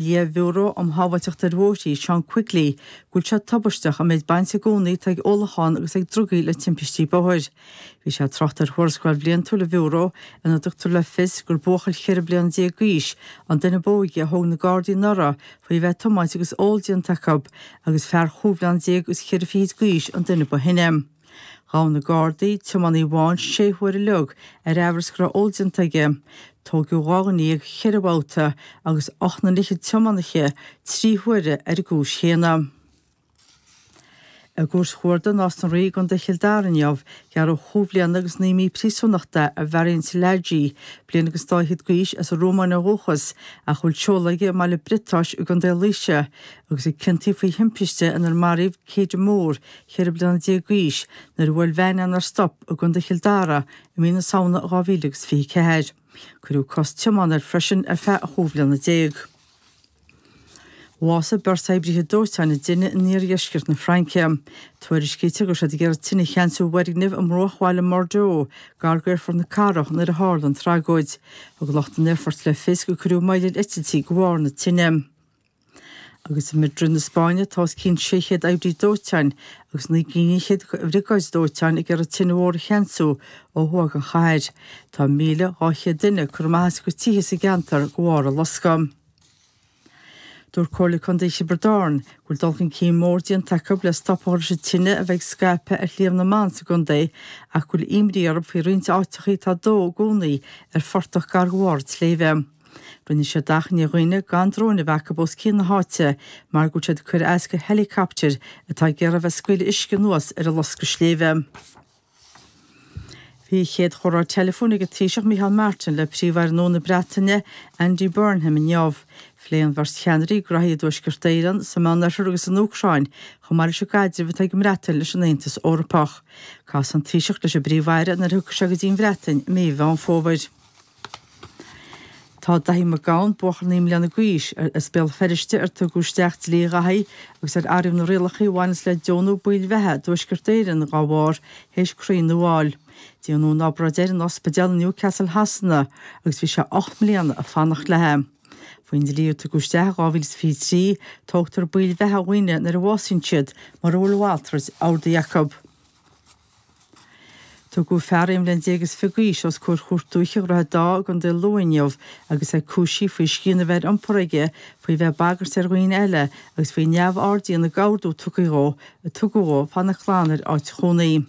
Lia-Bhiúró um Shábháilteacht ar Bhóithrí, Seán Quigley, go bhfuil sé tubaisteach an méid bainte i gcónaí atá ag ólachán agus ag drugaí le timpistí bóthair. Bhí sé ag trácht ar thuarascáil bhliantúil an Bhiúró ina dtugtar le fios gur buachaill cheithre bliana déag d'aois an duine b'óige a thóg na Gardaí anuraidh faoi a bheith ag tiomáint agus ól déanta acu agus fear chúig bhliana déag agus cheithre fichid d'aois an duine ba shine. Ghabh na Gardaí tiománaí amháin sé huaire uilig ar aimhreas go raibh ól déanta aige. Tóigeadh dhá dhuine dhéag cheithre bhabhta agus ocht nduine fhichead tiománaithe trí huaire ar an gcúis chéanna. I gCúirt Chuarda Nás na Rí i gContae Chill Dara inniu, gearradh chúig bhliana agus naoi mí príosúnachta ar Mharian Szilágyi, bliain agus dá fhichead d'aois, as an Rómáin ó dhúchas, ach a bhfuil seoladh aige i mBaile Briotáis i gContae Laoise, agus a ciontaíodh faoi thimpiste inar maraíodh Kedagh Moore, 14 bliana d'aois nuair a bhuail veain é nár stop i gContae Chill Dara i mí na Samhna 2000 agus 24. Cuireadh cosc tiomána air freisin ar feadh chúig bhliana déag. Bhásaigh beirt oibrithe dóiteáin i dtine in iardheisceart na Fraince. Tuairiscítear go raibh siad ag iarraidh tine a cheansú i bhfoirgneamh i mbruachbhaile i mBordeaux, gar do aerfort na cathrach, nuair a tharla an tragóid. Thug lucht an aerfoirt le fios gur cuireadh moill ar eitiltí de bharr na tine. agus i Madrid na Spáinne tá os cionn 600 oibrí dóiteáin agus naoi gcinn fhichead de bhriogáid dóiteáin ag iarraidh tine mhór a cheansú ó thuaidh den chathair. Tá 1,200 duine curtha amach as a gcuid tithe sa gceantar de bharr an loscadh. Dúirt Comhairle Contae Thiobraid Árann go bhfuil dul chun cinn mór déanta acu le stop a chur leis an tine a bheith ag scaipeadh ar Shliabh na mBan sa gcontae ach go bhfuil imní orthu faoi roinnt áiteachaí atá ag dó i gcónaí ar phortach gar do bharr an tsléibhe. Rinne siad achainí ar dhaoine gan dróin a bheith acu os cionn na háite mar go bhfuil siad ag cur as do héileacaptair atá ag iarraidh a bheith ag scaoileadh uisce anuas ar an loscadh sléibhe. Bhí a chéad chomhrá teileafóin ag an Taoiseach Micheál Martin le Príomh-Aire nua na Breataine, Andy Burnham inniu. Phléigh an bheirt cheannairí graithí i dTuaisceart Éireann, sa Mheánoirthear agus san Úcráin, chomh maith leis an gcaidreamh atá ag an mBreatain leis an Aontas Eorpach. Casfaidh an Taoiseach leis an bPríomh-Aire nuair a thiocfaidh sé go dtí an Bhreatain i mí Mheán Fómhair. Tá Daithí Mac Gabhann buachaill naoi mbliana d'aois as Béal Feirste, ar tugadh isteach Dlí Dhaithí agus ar athraíodh na rialacha a bhaineas le deonú baill bheatha i dTuaisceart Éireann dá bharr, théis croí nua a fháil. Déanadh an obráid air in Ospidéal i Newcastle Shasana agus bhí sé ocht mbliana ag fanacht léi. Faoin dlí a tugadh isteach in 2023, tógtar baill bheatha ó dhaoine nuair a bhásaíonn siad, mura bhfuil a mhalrait ordaithe acu. Tugadh fear aon bhliain déag is fiche d'aois os comhair Chúirt Dúiche Dhroichead Átha i gContae Lú inniu agus é cúisithe faoi scian a bheith ar iompar aige, faoi bheith ag bagairt ar dhaoine eile agus faoi neamhaird a dhéanamh de ordú a tugadh dhó fanacht glan ar áit chónaí.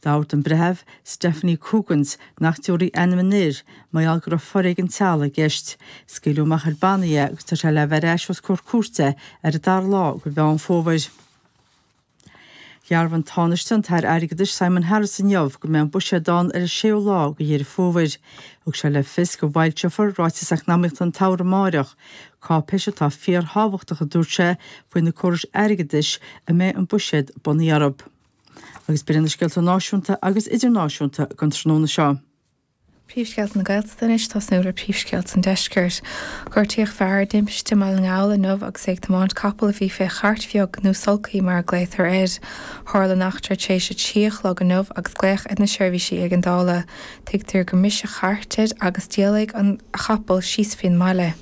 D'ordaigh an Breitheamh Stephanie Coggans nach dtabharfaí ainm an fhir, mar gheall go raibh foréigean teaghlaigh i gceist. Scaoileadh amach ar bannaí é agus tá sé le bheith ar ais os comhair cúirte ar an dara lá de Mheán Fómhair. Dhearbhaigh an Tánaiste, an tAire Airgeadais Simon Harris inniu go mbeidh an Buiséad ann ar an séú lá de Dheireadh Fómhair. Thug sé le fios go bhfoilseofar Ráiteas Eacnamaíochta an tSamhraidh amárach, cáipéis atá fíorthábhachtach a dúirt sé faoi na córais airgeadais a mbeidh an Buiséad bunaithe orthu. Agus b'iad sin na scéalta náisiúnta agus idirnáisiúnta don tráthnóna seo. Príomhscéalta na Gaeltachta anois ag tosnú le príomhscéalta an Deiscirt. Gortaíodh fear i dtimpiste i mBaile na nGall inniu agus é ag tiomáint capaill a bhí fé chairt bheag, nó sulcaí mar a ghlaotar air. Tharla an eachtra tar éis a trí a chlog inniu agus glaodh ar na seirbhísí éigeandála. Tuigtear gur bhris an chairt air agus d'éalaigh an capall síos faoin mbaile.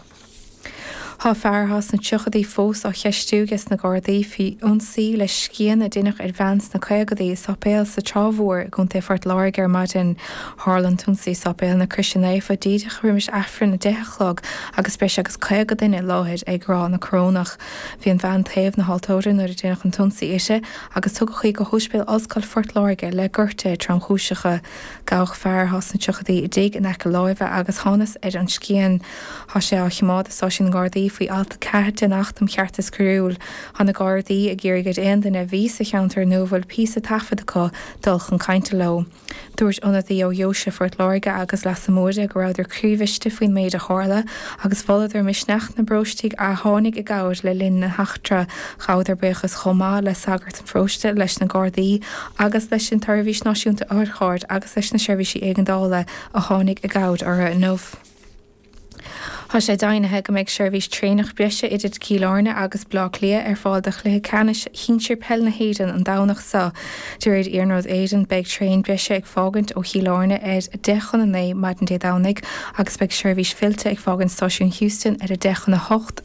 Tá fear sna tríochaidí fós á cheistiú aige sna Gardaí faoi ionsaí le scian a deineadh ar bhean sna caogadaí i sáipéal sa Trá Mhór i gContae Phort Láirge ar maidin. Tharla an t-ionsaí i Sáipéal na Croise Naofa díreach roimis Aifreann a deich a chlog agus breis agus caoga duine i láthair ag rá na Corónach. Bhí an bhean taobh na haltóra nuair a deineadh an t-ionsaí uirthi agus tugadh í go hÓispéal Ollscoil Phort Láirge le gortaithe tromchúiseacha. Gabhadh fear sna tríochaidí i dtigh in aice láimhe agus thánas ar an scian. Tá sé á choimeád i Stáisiún na nGardaí faoi Alt 4 den Acht um Cheartas Coiriúil. Tá na Gardaí ag iarraidh ar aon duine a bhí sa cheantar nó a bhfuil píosa taifead acu dul chun cainte leo. Dúirt ionadaí ó Dheoise Phort Láirge agus Leasa Móire go rabhadar croíbhriste faoin méid a tharla agus mholadar misneach na bparóistigh a tháinig i gcabhair le linn na heachtra. Ghabhadar buíochas chomh maith le sagart an pharóiste, leis na Gardaí agus leis an tSeirbhís Náisiúnta Otharcharr agus leis na seirbhísí éigeandála a tháinig i gcabhair orthu inniu. Tá sé deimhnithe go mbeidh seirbhís traenach breise idir Cill Airne agus Baile Átha Cliath ar fáil do chluiche ceannais shinsir peil na hÉireann an Domhnach seo. De réir Iarnród Éireann, beidh traein breise ag fágaint ó Chill Airne ar a deich chun a naoi maidin Dé Domhnaigh agus beidh seirbhís fillte ag fágaint Stáisiún Heuston ar a deich chun a hocht